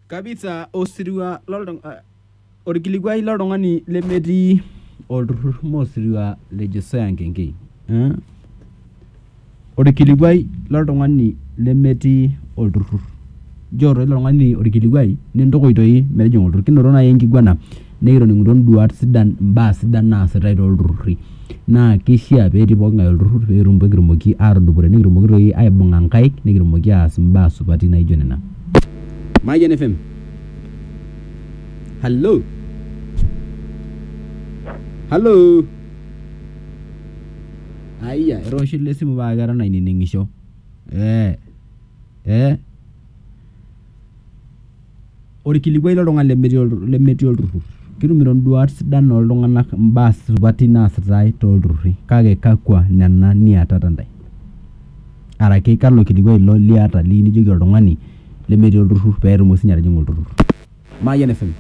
kabisa osirua loltung eh, orkilikuai loltung'ani lemetii olturrur mosirua le Josiah Nkengei eh? orkilikuai loltung'ani lemetii olturrur njoo toi ilo tung'ani orkilikuai nintukuj toi metijing'a olturrur kinoto naaji enkiguana nikitoning'utuo induat sidan imbaa sidan naasitai tolturrurri. Naa keishia petii pooking'ae olturrur peetum peekitumoki atudupore nikitumoki toi aibung'a nkaik nikitumoki aas imbaa supati naijo nena. Mayian FM, Hallo? Hallo? Ayia etoosho ele simu paa keton ainining'isho. Ee ee. orkilikuai loltung'ani lemetii oltu lemetii olturrur ketumito induat sidan oltung'anak imbaa supati naasitae tolturruri kake kakwa nena niatata intae araki kalo kilikuai ilo liata liu nijoki oltung'ani lemetii olturrur petumoki sinye atijing'a olturrur Mayian FM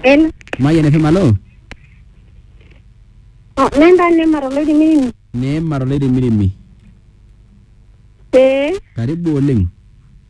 Hello. Mayian FM alo Oh, nenda nema toloirimiri. neema toloirimirimi Ee. karibu oleng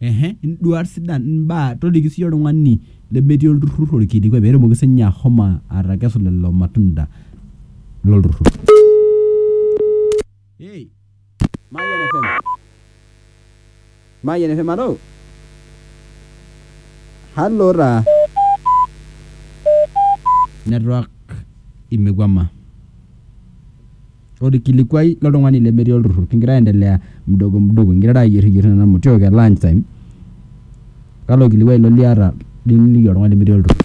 Ehe induat sidan imbaa toliki siyie oltung'ani lemetii olturrur orkilikuai petumoki sinye ahomo atekesu lelo matunda lolturrur hey, Mayian FM. Mayian FM alo halo taa network imekuama orkilikuai loltung'ani lemetii olturrur kingira aendelea mdogo mdogo ingirara ayieriyierr nena motiok e lunch time kalo kilikuai ilo liata liniliki oltung'ani lemetii olturrur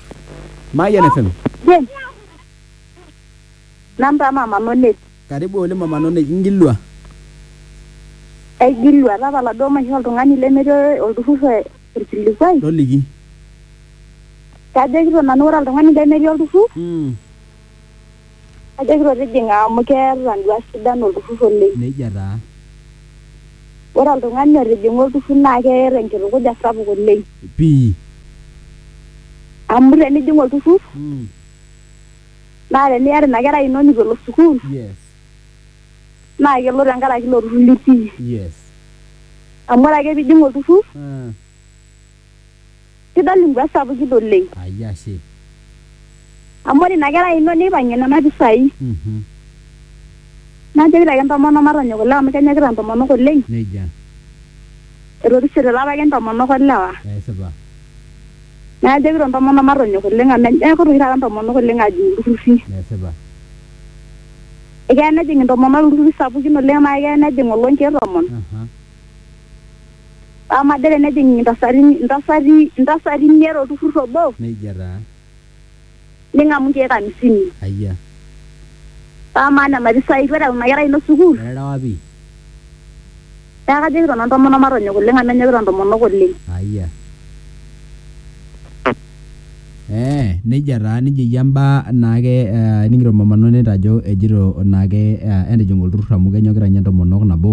Mayian FM Jen. Namba mama Nonet. karibu oleng mama Nonet ingilua Aigilua, tapala duo maisho oltung'ani lemetii olturrur e- orkilikuai. toliki Kajokito nanu ore oltung'ani lemetii olturrur, mm. Ajokito tijing'a amu keeta nduat sidan olturrur oleng. Neijia taa. Ore oltung'ani otijing'a olturrur naa keeta enkitukuja sapuk oleng. Pii. Amu tenijing olturrur naa teniata ina kerai ino neitu elo sukuul naa kelo tenkaraki ilo turrur litii. Amu ore ake pee ijing olturrur Kidol imbaa sapukin oleng. Ai ashe. Amu ore ina kerai ino neipang'ie nena pisai. Mhm. Najoki ake intomonok matonyok ilewa amu kenyokita intomonok oleng. Neija. Etorishote ilapa ake intomonok o lewa. Esipa. Neaku ajokito intomonok matonyok oleng amu enyokita oshi taata intomonok oleng aajing ilturrurri. Esipa. Ekeya nejing intomonok ilturrurri sapukin oleng amu ekeya nejing oloo nkeek tomon. Aha. Amu majo tenejing intasati intasati intasati imiet olturrur obo. Neijia taa. Ning'amu inkeek amisini. Ayia. Paa amaa nena pisai itu ereu ina kerai ino sukuul? Eterewa pii. Neeku kajoki nanu intomonok matonyok oleng amu enyokita intomonok oleng. Ayia. Eeh neija taa neija eiko imbaa naake ening'ito mama Nonet ajo ejito naake entijing'a olturrur amu kenyokita ninye intomonok nabo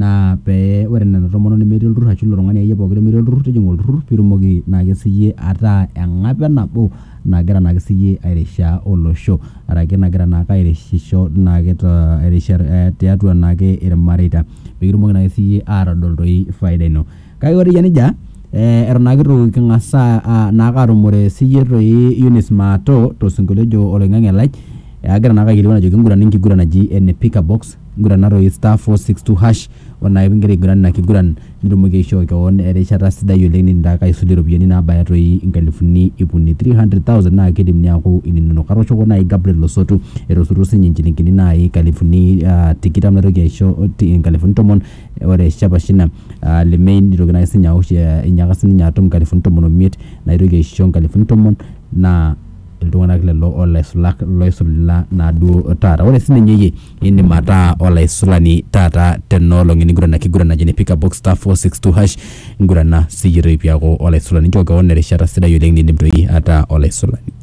naa pee ore nena tomonok nemetii olturrur ashu ilo tung'ani akeiye pooki lemetii olturrur tijing'a olturrur piitumoki naake siyie ataa eng'ape nabo nagira naake siyie airishaa olosho arake nagira naake airishisho naake to tiatua naake irmareita pekitumoki naake siyie atodol toi faida ino. Kake ore eyia nejia, eton naake itu king'as naake atumore siyie toi Eunice Maato tosinkolio ojo Oloing'ang'e Lai, agira naake aikilikuan ajoki kingurana enkiguran naji ene pick a box, ngurana toi star four six two hash, ore naake pigira aiguran ina kiguran nitumoki aishoo keon erishata sidai oleng' niindim taake aisudoi iropiyiani naabaya toi inkalifuni iip uni, three hundred thousand, naa kiidim ninye aaku ininonok. Atooshoki naai Gabriel Losotu etosotuo siinye inchilingini naai inkalifuni tikitam naitoki aisho inkalifuni tomon Ore Shapashina aa le Mei neitoki naa sininye aosh einyaka sininye atum nkalifuni tomon omiet naitoki aisho nkalifuni tomon naa iltung'anak lelo olaisulak loisula naa duo taata. Ore sininye iyie indim ataa olaisulani taata tena olong' eniguran ake enkiguran naji ene pick up box star four six two hash ngurana siyie toi piaku olaisulani. Nchoo kewon erishata sidai oleng nindim toi ataa olaisulani.